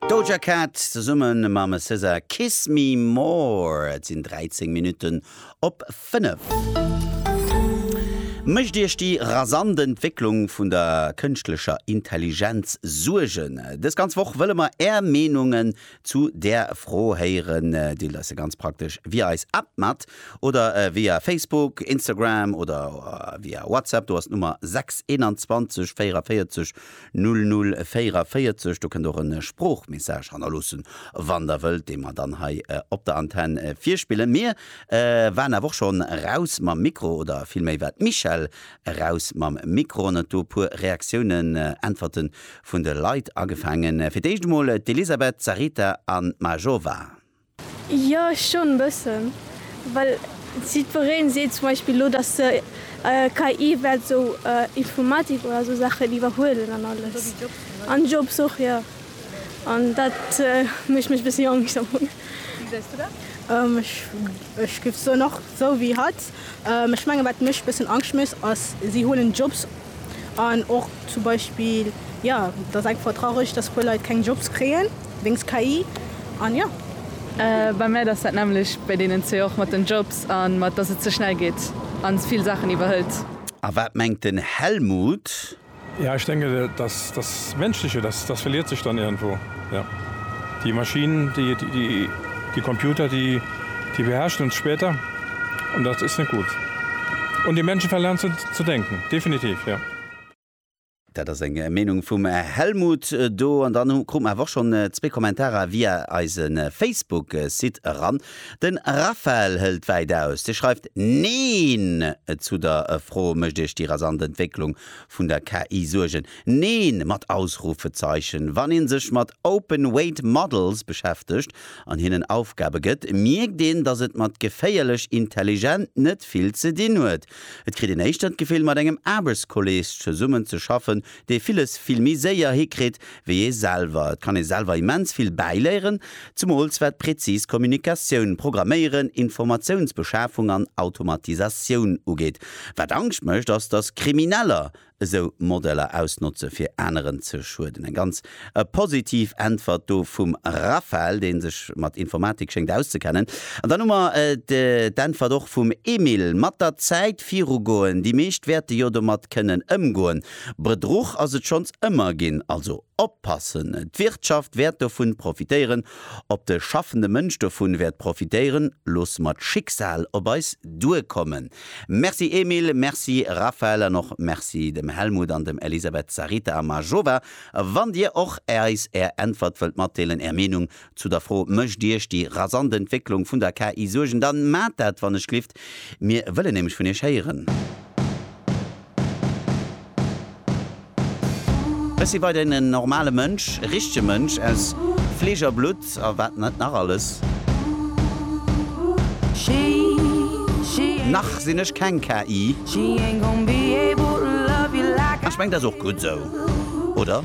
Doja Cat zesumme mam SZA Kiss Me More. Et sinn 13 Minutten op 5. Mécht Iech déi rasant Entwécklung vun der kënschtlecher Intelligenz Suergen? Dës ganz Woch wëlle mer Är Meenungen zu där Fro héieren. Deelt eis se ganz praktesch via eis App mat oder via Facebook, Instagram oder via WhatsApp. Do ass d'Nummer 6 21 44 0044, do kënnt och e Sproochmessage hannerloossen, wann der wëllt, dee mer dann hei op der Antenn virspillen. Mir waren awer och schonn raus mam Mikro, oder villméi war d'Michèle raus mam Mikro an huet do e puer Reaktiounen, Äntwerte vun de Leit agefaangen. Fir d'éischt emol d'Elisabeth, d'Sarita an d'Majova. Jo schon e bëssen, well jiddwereen seet zum Beispill elo dass se KI wäert esou Informatik oder esou Saachen iwwerhuelen an alles an Jobs och jo an dat mécht mech e bëssi Angscht am Fong. Wéi gesäis du dat? Ech géif soen och esou wéi hatt. Ech mengen wat mech e bëssen Angscht mécht ass si huelen Jobs. An och zum Beispill, jo, et ass einfach traureg, dass e puer Leit keng Jobs kréien wéinst KI. An jo. Bei mär ass dat nämmlecht bei deenen zwee, och mat den Jobs a mat dass et ze schnell geet a vill Saachen iwwerhëlt. A wat mengt den Helmut? Jo, ech denken, dass dat Mënschleche, dat verliert sech dann iergendwou. Ja. Die Maschinen, die, die, die, die Computer, die, die beherrschen uns später. Und das ist nicht gut. Und die Menschen verlernen zu, zu denken. Definitiv, ja. Dat ass eng Meenung vum Helmut do. An dann hu, krute mer awer och schonn zwee Kommentarer via eise Facebook-Site eran. De Raphael hëlt wäit aus. Dee schreift, Neen! Zu der Fro, Mécht Iech déi rasant Entwécklung vun der KI Suergen? Neen mat Ausrufezeichen, wann een sech mat Open Weight Models beschäftegt an hinnen Aufgabe gëtt, mierkt een, dass et mat geféierlech intelligent net vill ze dinn huet. Et kritt een éischter d'Gefill, mat engem Aarbechtskolleeg zesummen ze schaffen, dee villes vill méi séier hikritt wéi ee selwer. Et kann ee selwer immens vill bäiléieren, zemools wat präzis Kommunikatioun, Programméieren, Informatiounsbeschafung an Automatisatioun ugeet. Wat Angscht mécht, ass, dass Krimineller esou Modeller ausnotze fir aneren ze schueden. Eng ganz positiv Äntwert do vum Raphael, dee sech mat Informatik schéngt auszekennen. An dann hu mer d'Äntwert och vum Emile, mat der Zäit virugoen, déi meescht wäerte jo domat kënnen ëmgoen. Bedruch ass et schonns ëmmer ginn, also oppassen. D'Wirtschaft wäert dovun profitéieren, ob de schaffende Mënsch dovun wäert profitéieren, loosse mer d'Schicksal op eis duerkommen. Merci Emile, merci Raphaël an och merci dem Helmut an dem Elisabeth, Sarita a Majova. Wann dir och eis är Äntwert wëllt matdeelen, är Meenung zu der Fro, Mécht iech déi rasant Entwécklung vun der KI Suergen? Dann maacht dat wann ech glifft, mir wëllen nämlech vun iech héieren. Ech si weiterhin en normale Mënsch, e richtege Mënsch aus Fleesch a Blutt a wat net nach alles. Nach sinn ech keng KI. Ech mengen, dat ass och gutt esou, oder?